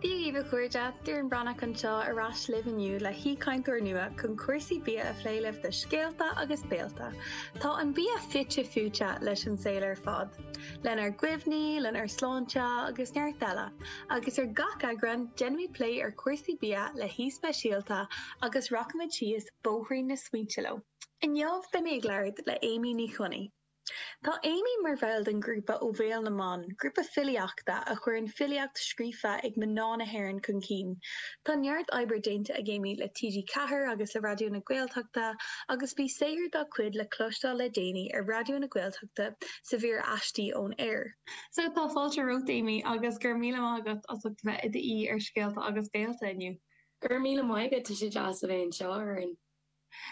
Dia dhaoibh a chairde, Doireann Breathnach anseo ar ais libh inniu le haoichainteoir nua chun cúrsaí bia a phlé libh do Scéalta agus Béalta. Tá an bia fite fuaite leis an saol ar fad, lenár gcuimhní, lenár sláinte agus neart eile, agus ar gach eagrán déanaimid plé ar chúrsaí bia le haoi speisialta agus rachaimid síos bóithrín na smaointe leo. Inniu beidh mé ag labhairt le Amy Ní Chionnaith. Tá Amy mar bhall den ghrúpa Ó Bhéal na mBan, grúpa filíochta a chuireann filíocht scríofa ag mná na hÉireann chun cinn. Tá neart oibre déanta ag Amy le TG Ceathair agus le Raidió na Gaeltachta agus bhí saothar dá cuid le cloisteáil le déanaí ar Raidió na Gaeltachta sa mhír Aistí ón Aer. So, tá fáilte romhat, Amy, agus go raibh míle maith agat as ucht a bheith i d'aoi ar Scéalta agus Béalta inniu. Go raibh míle maith agat, tá sé deas a bheith anseo ar an.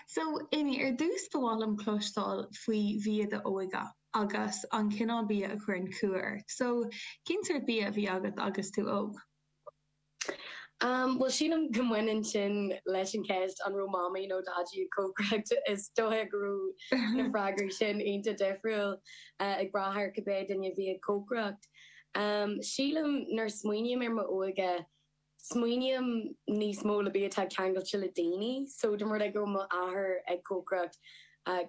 So, Amy, ar dtús ba mhaith liom cloisteáil faoi bhia d'óige agus an cineál bia a chuireann cumha ort. So, cén sórt bia a bhí agat agus tú óg? Um, bhuel, sílim go mbaineann sin leis an cheist an raibh Mamaí nó Daidí ag cócaireacht. Is dóiche go raibh na freagraí sin iontach difriúil, eh, ag brath ar cibé duine a bhí ag cócaireacht. Um, sílim nuair a smaoiním ar m'óige smaoiním níos mó le bia atá ceangailte le daoine so dá mba rud é go raibh m'athair ag cócaireacht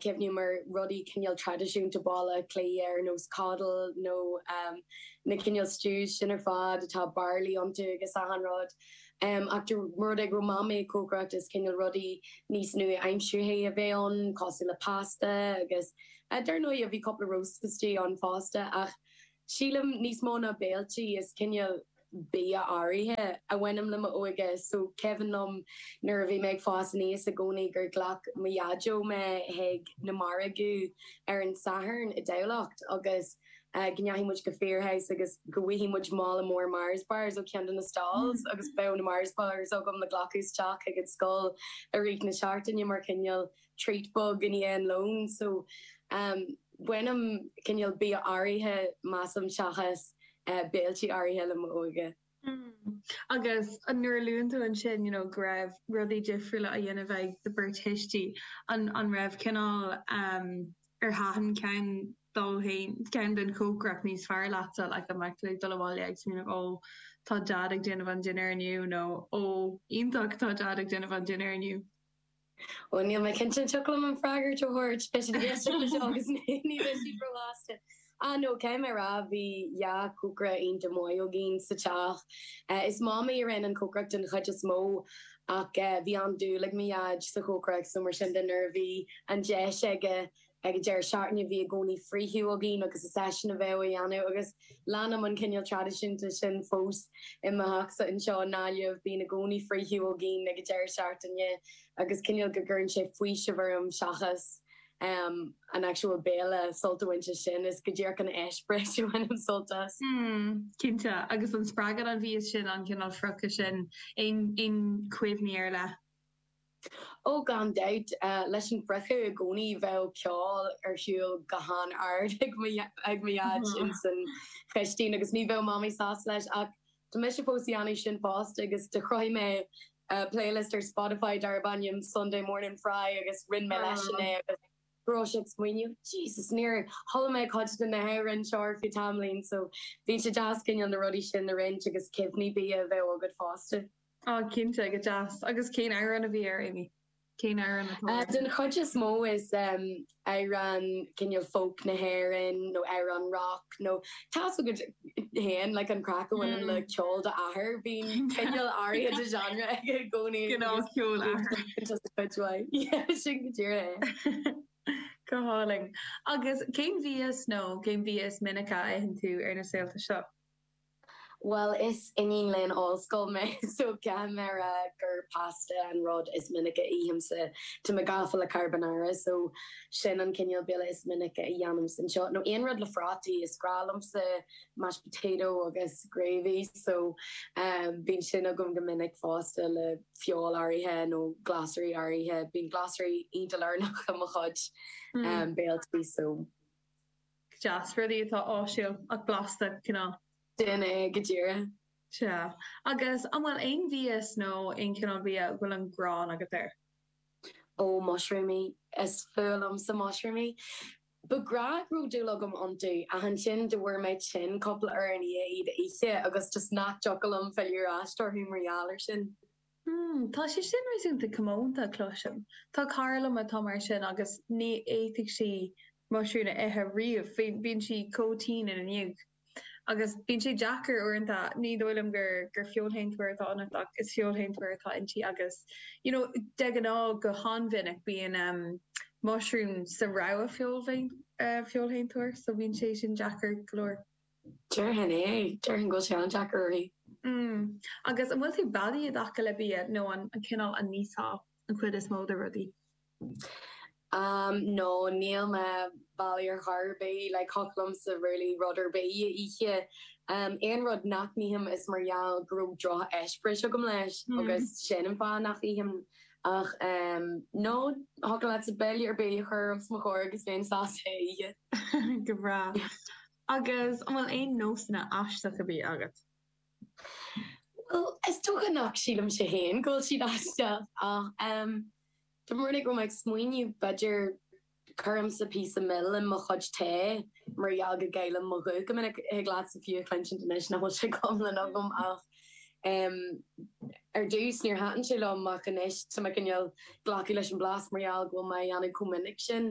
cuimhním ar rudaí cineál traidisiúnta Bhaile Átha Cliath ar nós coddle nó na cineál stews sin ar fad atá barley iontu agus achan rud ach dá mba rud é go raibh Mamaí ag cócaireacht is cineál rudaí níos nua-aimseartha a bheith ann cosúil le pasta agus dar ndóigh a bhí cúpla roast istigh ann fosta ach sílim níos mó ná béiltí is cineál bia áirithe a bhaineann le m'óige. So cuimhin liom nuair a bhí mé ag fás aníos i gcónaí gur ghlac mo Dhaideo mé chuig na margaí ar an Satharn i dTamhlacht agus go ndeachaigh muid go Firhouse agus go bhfaighfidh muid mála mór Mars Bars ó cheann de na stalls agus bheadh na Mars Bars agam le glacadh isteach chuig an scoil i rith na seachtaine mar chineál treat beag i ndiaidh an lón so bainim cineál bia áirithe, measaim, seachas béiltí áirithe le m'óige. Umm. Agus nuair a luann tú ansin, you know, go raibh rudaí difriúla á dhéanamh ag do bheirt thuistí, an, an raibh cineál, em, ar thaitin ceann dóibh fhéin, ceann den chócaireacht níos fearr leatsa, like an mbeadh tú ag dul abhaile ag smaoineamh ó tá Dad ag déanamh an dinnéar inniu nó ó iontach tá Dad ag déanamh an dinnéar inniu? Ó, níl mé cinnte, an dtiocfadh liom an freagairt a thabhairt? Beidh siad ag éisteacht anseo agus ní bheidh siad róshásta. Ah, no, caithfidh mé a rá, bhí dhá chócaire iontach maith againn sa teach. Is Mamaí a rinne an cócaireacht den chuid is mó ach bhí an-dúil ag mo Dhaid sa chócaireacht so mar sin de nuair a bhí an deis aige ag an deireadh seachtaine, bhí i gcónaí friochadh againn agus is eisean a bheadh á dhéanamh agus leanaim an cineál traidisiúnta sin fós i mo theachsa anseo i nGaillimh, bíonn i gcónaí friochadh againn ag an deireadh seachtaine agus cineál go gcuireann sé faoiseamh orm seachas an actual béile, sult a bhaint as sin, is go díreach an eispéireas a bhainim sult as. Mm, cinnte, agus an spreagann an bia sin, an cineál friochta sin, aon chuimhní ar leith? Ó, gan dabht, leis an fhriochadh i gcónaí bheadh ceol ar shiúl go han-ard ag mo dhaid ins an chistín agus ní bheadh mamaí sásta leis ach tá mise fós ag déanamh sin fosta agus do chruthaigh mé playlist ar Spotify darb ainm Sunday Morning Fry agus roinn mé leisean é agus go raibh sé ag smaoineamh Jesus níor chuala mé cuid de na hamhráin seo ar feadh tamaillín so bíonn sé deas cineál na rudaí sin a roinnt agus cuimhní bia a bheith agat fosta. Ah, cinnte, go deas. Agus cén amhrán a bhí air, Amy? Cén amhrán atá air? Den chuid is mó is amhrán cineál folk na hÉireann nó amhrán rock nó tá's agat féin, like, an craic a bhaineann le ceol d'athair, bíonn cineál áirithe de genre aige i gcónaí. Cineál ceoil athar. Just a cuid mhaith. Yeah, sin go díreach é. Go hálainn. Agus cén bia is nó cén bia is minice a itheann tú ar na saolta seo? Bhuel, is iníon léinn ollscoil mé so ceapaim ar ndóigh gur pasta an rud is minice a ithimse, tá mé gafa le carbonara so sin an cineál béile is minice a dhéanaimse anseo nó aon rud le prátaí, is breá liomsa mashed potato agus gravy so bíonn sin agam go minic fosta le feoil áirithe nó glasraí áirithe, bíonn glasraí iontach lárnach i mo chuid béilí so. deas, rudaí atá áisiúil ach blasta, cineál. Sin é go díreach. Sea. Agus an bhfuil aon bhia nó aon chineál bia a bhfuil an ghráin agat air? Ó, mushroomaí. Is fuath liomsa mushroomaí. B'aoibhinn liom go raibh dúil agam iontu ach ansin do bhfuair mé tinn cúpla uair i ndiaidh iad a ithe agus just nach dtiocfadh liom filleadh ar ais orthu mar gheall air sin. Hmm, tá sé sin réasúnta comónta, cloisim. Tá cara liom atá mar sin agus ní fhéadfadh sí muisiriún a ithe riamh, bíonn sí chomh tinn ina ndiaidh. Agus bíonn sé deacair uaireanta, ní dóigh liom gur feoilséantóir atá ionat ach is feoilséantóir atá inti agus you know de ghnáth, go han-mhinic bíonn ehm muisiriún sa rogha feoilséantóra so bíonn sé sin deacair go leor. Déarfainn é. Déarfainn go bhfuil sé an-deacair uirthi. Mm. Agus an bhfuil tú beadaí i dtaca le bia nó an amhlaidh a n-íosfá an chuid is mó de rudaí? Mm, no, níl mé beadaí ar chor ar bith. Like, thiocfadh liomsa really rud ar bith a ithe. Aon rud nach n-ithim is mar gheall go raibh drocheispéireas agam leis agus sin an fáth nach n-ithim. Ach no, thiocfadh leatsa béile ar bith a chur os mo chomhair agus bheinn sásta é a ithe. Go breá. Agus an bhfuil aon nósanna aisteacha bia agat? Bhuel, is dócha nach sílimse féin go bhfuil siad aisteach ach em de réir mar a bhfuil mé ag smaoineamh b'fhéidir cuirimse píosa mil i mo chuid tae mar gheall go gcaillim mo ghuth go minic. Thig leatsa fiú a chluinsint anois nach bhfuil sé go hiomlán agam ach em ar dtús níor thaitin sé liom ach anois tá mé cineál ag glacadh leis an blas mar gheall go bhfuil mé á dhéanamh chomh minic sin.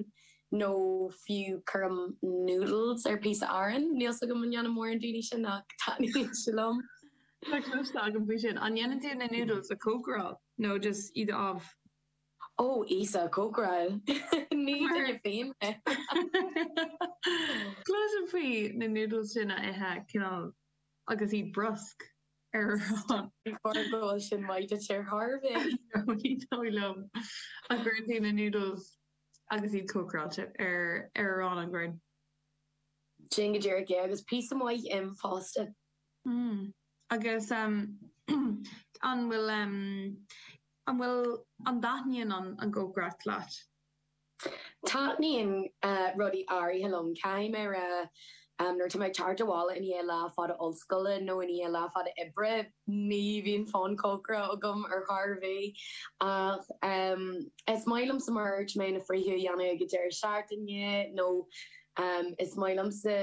nó fiú cuirim noodles ar phíosa aráin, níl 's agam an ndéanann mórán daoine sin ach taitníonn sé liom. Tá cleachtadh agam faoi sin. An ndéanann tú na noodles a chócaráil nó just iad amh? Ó, Íosa, cócaráil! Ní duine féin mé! Cloisim faoi na noodles sin a ithe cineál agus iad brusc ar arán. Ní foláir go bhfuil sin maith duit ar thairbhe! Ní dóigh liom a gcuireann tú na noodles agus iad cócaráilte ar arán an ea. Sin go díreach é, agus píosa maith im fosta. Mm. Agus an bhfuil, an bhfuil, an dtaitníonn an chócaireacht leat? Taitníonn rudaí áirithe liom. Caithfidh mé a rá Nuair atá mé ag teacht abhaile i ndiaidh lá fada ollscoile nó i ndiaidh lá fada oibre, ní bhíonn fonn cócaireachta orm ar chor ar bith ach is maith liomsa mar dúirt mé na friochtaí a dhéanamh ag an deireadh seachtaine nó is maith liomsa,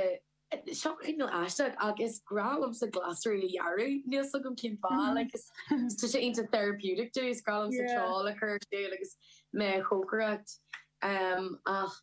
seo cineál aisteach ach is grá liomsa glasraí a ghearradh níl fhios agam cén fáth like is tá sé iontach therapeutic domh, is grá liomsa ceol a chur ar siúl agus mé ag cócaireacht ach.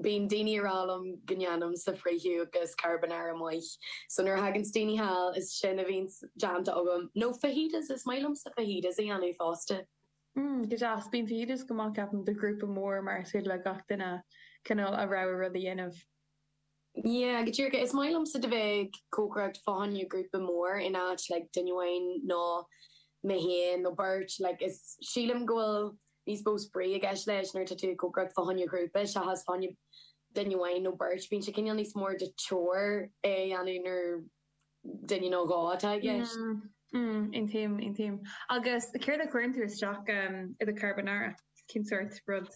Bíonn daoine ag rá liom go ndéanaimse friochadh agus carbonara maith. So nuair a thaganns daoine thall, is sin a bhíonn déanta agam. Nó fajitas, is maith liomsa fajitas a dhéanamh fosta. Mmm, go deas. Bíonn fajitas go maith ceapaim do ghrúpa mór mar is féidir le gach duine cineál a rogha rud a dhéanamh. Yeah, go díreach. Is maith liomsa do bheith ag cócaireacht fá choinne grúpa mór in áit like duine amháin nó mé féin nó beirt. Like is sílim go bhfuil Níos mó spraoi i gceist leis nuair atá tú ag cócaireacht fá choinne ghrúpa seachas fá choinne duine amháin nó beirt. Bíonn sé cineál níos mór de chore é a dhéanamh nuair duine nó dhó atá i gceist. Aontaím, aontaím. Agus céard a chuireann tú isteach i do charbonara? Cén sórt rud?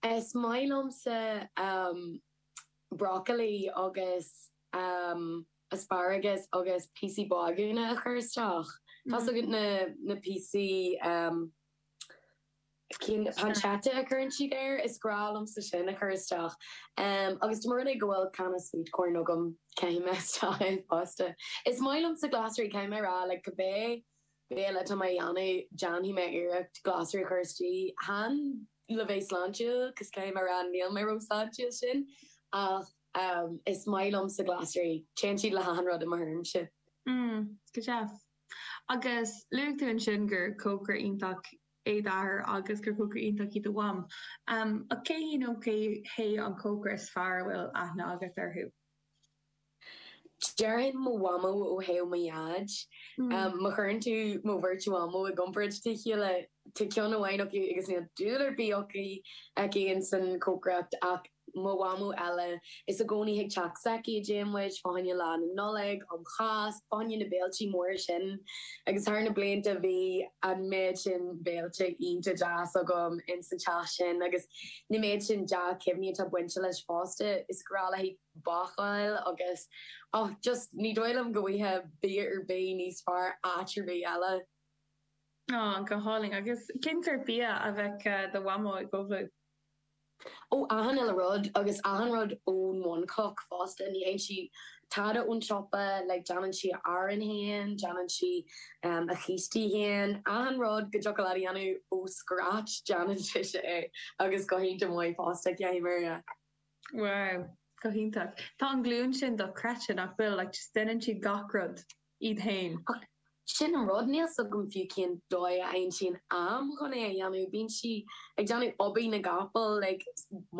Is maith liomsa brocailí agus asparagas agus píosaí bágúna a chur isteach. Tá's agat na píosaí. Sin pancetta a chuireann siad air, is grá liomsa sin a chur isteach. Agus dá mba rud é go bhfuil canna sweet corn agam, caithfidh mé isteach é fosta. Is maith liomsa glasraí, caithfidh mé a rá, like cibé béile atá mé a dhéanamh, déanfaidh mé iarracht glasraí a chur istigh. Chan le bheith sláintiúil, cos caithfidh mé a rá níl mé chomh sláintiúil sin, ach is maith liomsa glasraí, téann siad le hachan rud i mo thuairimse. Mm, go deas. Agus luaigh tú ansin gur cócaire iontach é d'athair agus gur cócaire iontach í do mham. Ach cé hí nó cé hé an cócaire is fearr a bhfuil aithne agat orthu? Déarfainn mo mhamó ó thaobh mo dhaid. Má chuireann tú mo bheirt mhamó i gcomparáid dá chéile, tá ceann amháin acu agus níl dúil ar bith aici insan chócaireacht ach mo mhamó eile, is i gcónaí chuig teach s'aici a dtéann muid, fá choinne Lá na Nollag, um Cháisc, fá choinne na bhféiltí móra sin. Agus thar na blianta bhí an méid sin béilte iontach deas agam ins an teach sin agus na méid sin dea-chuimhní atá bainte leis fosta, is grá léithi bácáil agus och, just ní dóigh liom go bhfuighfeá bia ar bith níos fearr áit ar bith eile. Go hálainn. Agus cén sórt bia a bheadh do mhamó ag ullmhú. ó achan uile rud agus achan rud ón bhunchloch fosta, ní fhaigheann sí tada ón tsiopa, like déanann sí a arán féin, déanann sí a chístí féin, achan rud go dtiocfadh leat a dhéanamh ó scratch, déanann sise é agus go hiontach maith fosta, caithfidh mé a rá. Wow, go hiontach. Tá an ghlúin sin dochreidte, nach bhfuil, like just déanann siad gach rud. iad féin. Ach sin an rud, níl 's agam fiú cén dóigh a aimsíonn am chun é a dhéanamh. Bíonn sí ag déanamh obair na gcapall, ag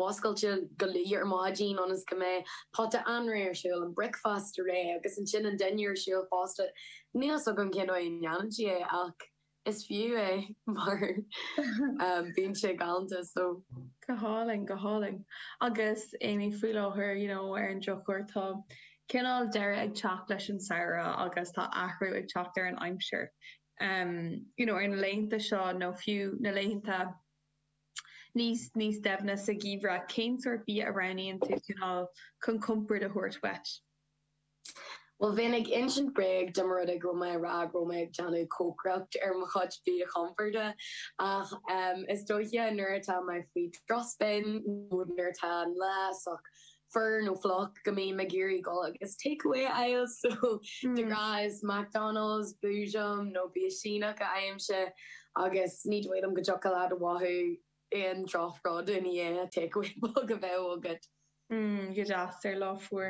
múscailt go luath ar maidin ionas go mbeidh pota anraith ar siúl, an breakfast réidh agus ansin an dinnéar ar siúl fosta. Níl 's agam cén dóigh a ndéanann sí é ach. Is fiú é mar bíonn sé galanta so. Go hálainn, go hálainn. Agus Amy, faoi láthair, you know, ar an drochuair tá cineál deireadh ag teacht leis an samhradh agus tá athrú ag teacht ar an aimsir. em, you know, ar na laethanta seo nó fiú na laethanta níos, níos doimhne sa gheimhreadh, cén sórt bia a roghnaíonn tú cineál chun compord a thabhairt dhuit? Bhuel, bheinn ag insint bréag dá mba rud é go raibh mé a rá go raibh mé ag déanamh cócaireacht ar mo chuid bia compoird, ach is dóiche nuair atá mé faoi strus b'fhéidir nó nuair atá an lá sách fuar nó fliuch go mbím ag iarraidh dul agus takeaway a fháil, so de ghnáth is McDonald's, Boojum nó bia Síneach a fhaighimse agus ní dóigh liom go dtiocfadh leat a mhothú aon droch-rud ina dhiaidh takeaway beag a bheith agat. Mm, go deas, ar lá fuar.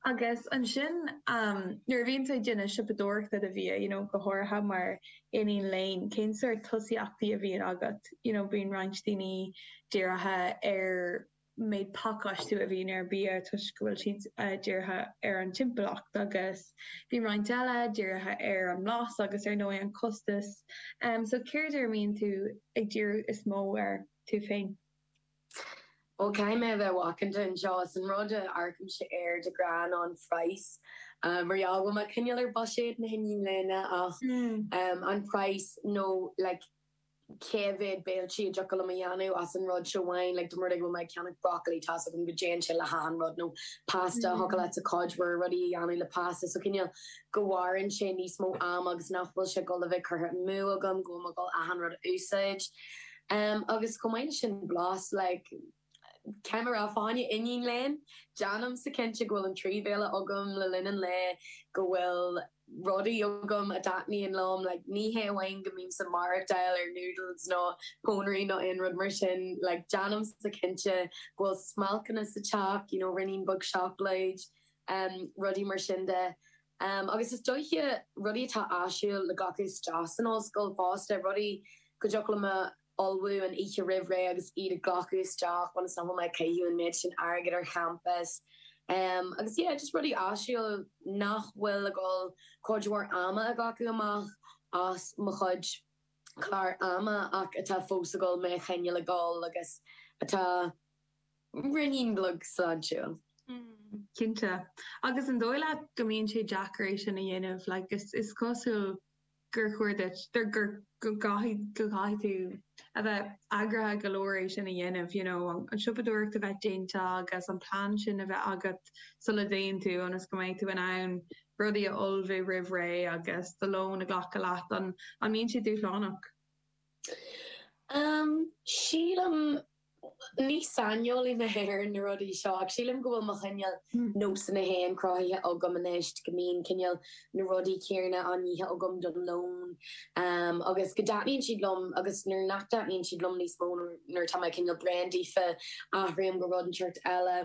Agus ansin nuair a bhíonn tú ag déanamh siopadóireachta do bhia, you know go háirithe mar iníon léinn, cén sórt tosaíochtaí a bhíonn agat? You know bíonn roinnt daoine dírithe ar méid pacáistiú a bhíonn ar bhia toisc go bhfuil siad dírithe ar an timpeallacht agus bíonn roinnt eile dírithe ar an mblas agus ar ndóigh an costas. So céard ar a mbíonn tú ag díriú is mó air tú féin? Ó, caithfidh mé a bheith macánta anseo, is an rud a amharcaimse air de ghnáth an price, mar gheall go bhfuil mé cineál ar buiséad na hiníne léinn ach an price nó like cé mhéad béiltí a dtiocfadh liom a dhéanamh as an rud seo amháin, like dá mba rud é go raibh mé ag ceannach broccoli tá's agam go dtéann sé le hachan rud nó pasta, thiocfadh leatsa cuid mhór rudaí a dhéanamh le pasta so cineál go mhaireann sé níos mó ama agus nach bhfuil sé ag dul a bheith curtha amú agam go bhfuil mé ag dul achan rud a úsáid. Em, agus chomh maith leis sin, blas, like, cé mar a raibh mé i m'iníon léinn, déanaimse cinnte go bhfuil an trí bhéile agam le linn an lae, go bhfuil rudaí agam a dtaitníonn liom, like, ní hé amháin go mbímse maireachtáil ar noodles nó pónairí nó aon rud mar sin, like, déanaimse cinnte go bhfuil smailceanna sa teach, you know, ruainnín beag seacláid, em, rudaí mar sin de. Um, agus is dóiche, rudaí atá áisiúil le glacadh isteach san ollscoil fosta, rudaí go dtiocfadh liom a ullmhú an oíche roimh ré agus iad a ghlacadh isteach ionas nach bhfuil mé ag caitheamh an méid sin airgid ar champas. Um, agus yeah, just rudaí áisiúil nach bhfuil ag dul cuid mhór ama a ghlacadh amach as mo chuid clár ama ach atá fós ag dul mé a choinneáil ag dul agus atá. Rud beag sláintiúil. Cinnte. Agus an dóigh leat go mbíonn sé deacair é sin a dhéanamh? Like, is cosúil gur chóir duit, gur, go gcaithfidh, go gcaithfidh tú a bheith eagraithe go leor é sin a dhéanamh, you know, an siopadóireacht a bheith déanta agus an plean sin a bheith agat sula dtéann tú ionas go mbeidh tú in ann rudaí a ullmhú roimh ré agus do lón a ghlacadh leat. An, an mbíonn sé dúshlánach? Sílim Ní saineolaí mé ar na rudaí seo ach sílim go bhfuil mo chineál nósanna féin cruthaithe agam anois go mbíonn cineál na rudaí céanna á n-ithe agam don lón agus go dtaitníonn siad liom agus nuair nach dtaitníonn siad liom níos mó nuair atá mé cineál bréan daofa athraím go rud inteacht eile.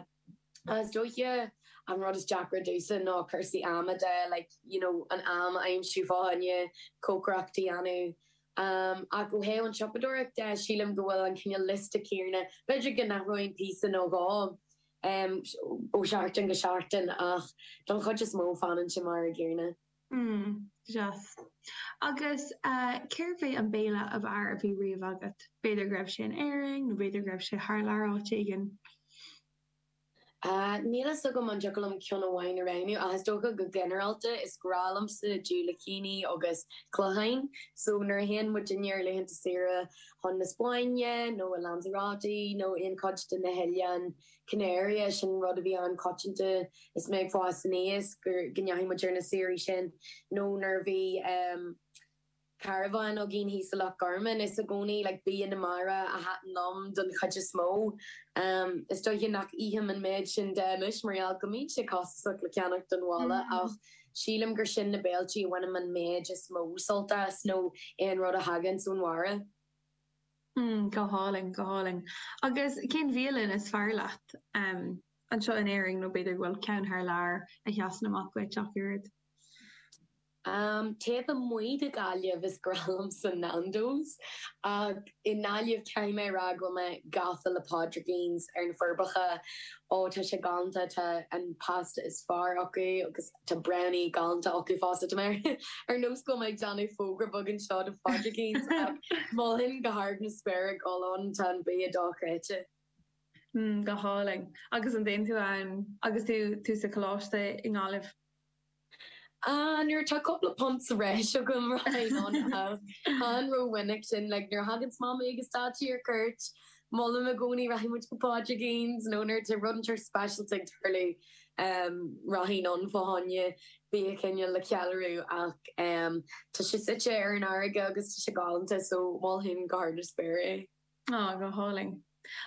is dóiche an rud is deacra domhsa ná cúrsaí ama, like, you know, an am a aimsiú fá choinne cócaireacht a dhéanamh. Ach ó thaobh an tsiopadóireachta, sílim go bhfuil an cineál liosta céanna, b'fhéidir go n-athróinn píosa nó dhó ó sheachtain go seachtain ach don chuid is mó fanann sé mar an gcéanna. Hmm. Deas. Agus cérbh é an béile ab fhearr a bhí riamh agat? B'fhéidir go raibh sé in Éirinn, nó b'fhéidir go raibh sé thar lear áit éigin. Ah. Níl a fhios agam an dtiocfadh liom ceann amháin a roghnú, ach is dócha go ginearálta is grá liomsa diúilicíní agus cloicheáin. So, nuair a théann muid ar laethanta saoire chun na Spáinne, nó i Lanzarote, nó aon chuid de na hoileáin, Canary, é sin rud a bhí an-choitianta is mé ag fás aníos, gur, go ndeachaigh muid ar na saoirí sin nó nuair a bhí ehm carabhán againn thíos i Loch Garman is i gcónaí like bia na mara a thaitin liom don chuid is mó. Ehm is dóiche nach ithim an méid sin de anois mar gheall go mbíonn sé costasach le ceannacht don bhaile ach sílim gur sin na béilí a bhainim an méid is mó sult as nó aon rud a thaganns ón mhara. Hmm, go hálainn, go hálainn. Agus cén bhialann is fearr leat, em, anseo in Éirinn nó b'fhéidir go bhfuil ceann thar lear a sheasann amach duit ach oiread? Em, taobh amuigh de Ghaillimh is grá liomsa Nando's ach i nGaillimh caithfidh mé a rá go bhfuil mé gafa le Pádraigín's ar na Forbacha, ó tá sé galánta, tá an pasta is fearr acu agus. Tá Brownie galanta acu fosta. Tá mé ar nós go bhfuil mé ag déanamh fógra beag anseo do Phádraigín's ach mholfainn go hard na spéire a ghabháil ann, tá an bia dochreidte. Mm, go hálainn. Agus an dtéann tú ann agus tú sa choláiste i nGaillimh? Ah, nuair atá cúpla punt sa bhreis agam, rachainn ann ach chan rómhinic sin. Like, nuair a thaganns Mamaí agus Daidí ar cuairt, Molaim i gcónaí 'Rachaidh muid go Pádraigín's' nó nuair atá rud inteacht speisialta ag tarlú, 'Rachainn ann fá choinne bia cineál le ceiliúradh' ach tá sé suite ar an fharraige agus tá sé galánta so mholfainn go hard na spéire é. Á, go hálainn.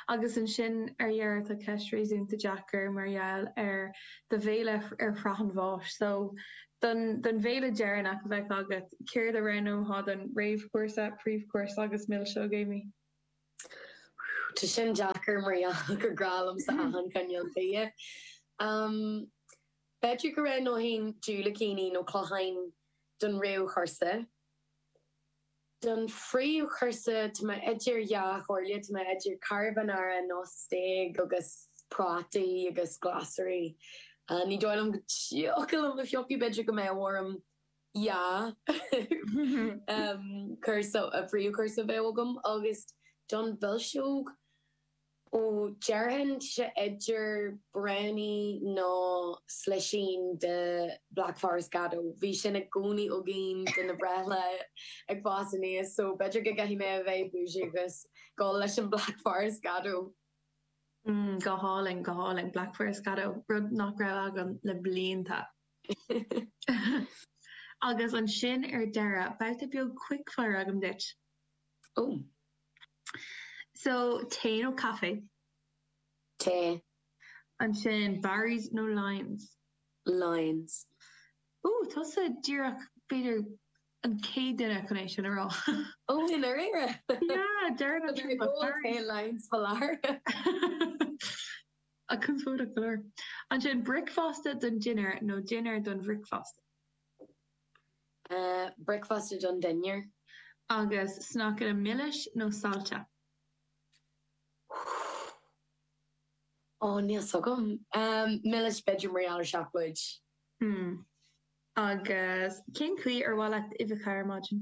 Agus ansin ar dheireadh tá ceist réasúnta deacair mar gheall ar do bhéile ar shraith an bháis so, don bhéile deireanach a bheadh agat, céard a roghnófá don réamhchúrsa, príomhchúrsa agus milseog, Amy? Tá sin deacair mar gheall gur grá liomsa achan chineál bídh. B'fhéidir go roghnóinn diúilicíní nó cloicheáin don réamhchúrsa. Don phríomhchúrsa tá mé idir dhá chomhairle, tá mé idir carbonara nó stéig agus prátaí agus glasraí. Ní dóigh liom go dtiocfadh liom piocadh, b'fhéidir go mbeadh orm yeah príomhchúrsa a bheadh agam agus don mhilseog ó déarfainn sé idir brownie nó slisín de Black Forest Gateau. Bhí sin i gcónaí againn do na breithlá ag fás aníos so b'fhéidir go gcaithfidh mé a bheith bougie agus dul leis an Black Forest Gateau. Go hálainn, go hálainn. Black Forest Gateau, rud nach raibh agam le blianta. Agus ansin ar deireadh, babhta beag quick fire agam duit. Ó. So, tae nó caife? Tae. Ansin, Barry's nó Lyons? Lyons. Ó, tusa díreach, b'fhéidir, an chéad duine chun é sin a rá. Ó, i ndáiríre? Yeah, deireadh an trip. Lyons, faláir. Ach conspóideach go leor. Ansin, bricfeasta don dinnéar nó dinnéar don bhricfeasta? Bricfeasta don dinnéar. Agus sneaiceanna milis nó saillte? Ó, níl 'fhios agam. Milis, b'fhéidir, mar gheall ar seacláid. Hmm. Agus cén chaoi ar mhaith leat uibheacha ar maidin?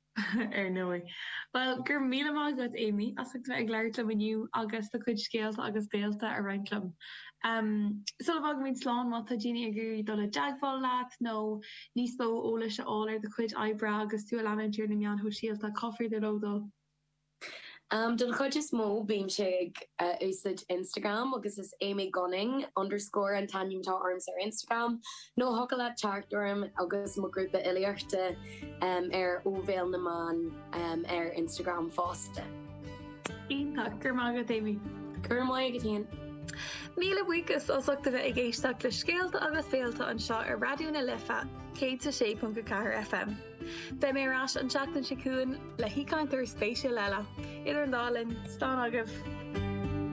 ar ndóigh. Bhuel, go raibh míle maith agat, Amy, as ucht a bheith ag labhairt liom inniu agus do chuid scéalta agus béilte a roinnt liom. Sula bhfágaimid slán, má tá daoine ag iarraidh dul i dteagmháil leat nó níos mó eolais a fháil ar do chuid oibre agus tú a leanúint ar na meáin shóisialta, cá féidir leo dul? Den chuid is mó bímse ag úsáid Instagram agus is Amy Gunning underscore an t-ainm atá ormsa ar Instagram. Nó thiocfadh leat teacht orm agus mo ghrúpa fhilíochta ar Ó Bhéal na mBan ar Instagram fosta. Iontach! Go raibh maith agat, Amy! Go raibh maith agat, Ian! Míle buíochas as ucht a bheith ag éisteacht le Scéalta agus Béilte anseo ar Raidió na Life 106.4 FM. Beidh mé ar ais an tseachtain seo chugainn le haoichainteoir spéisiúil eile. Idir an dá linn, slán agaibh!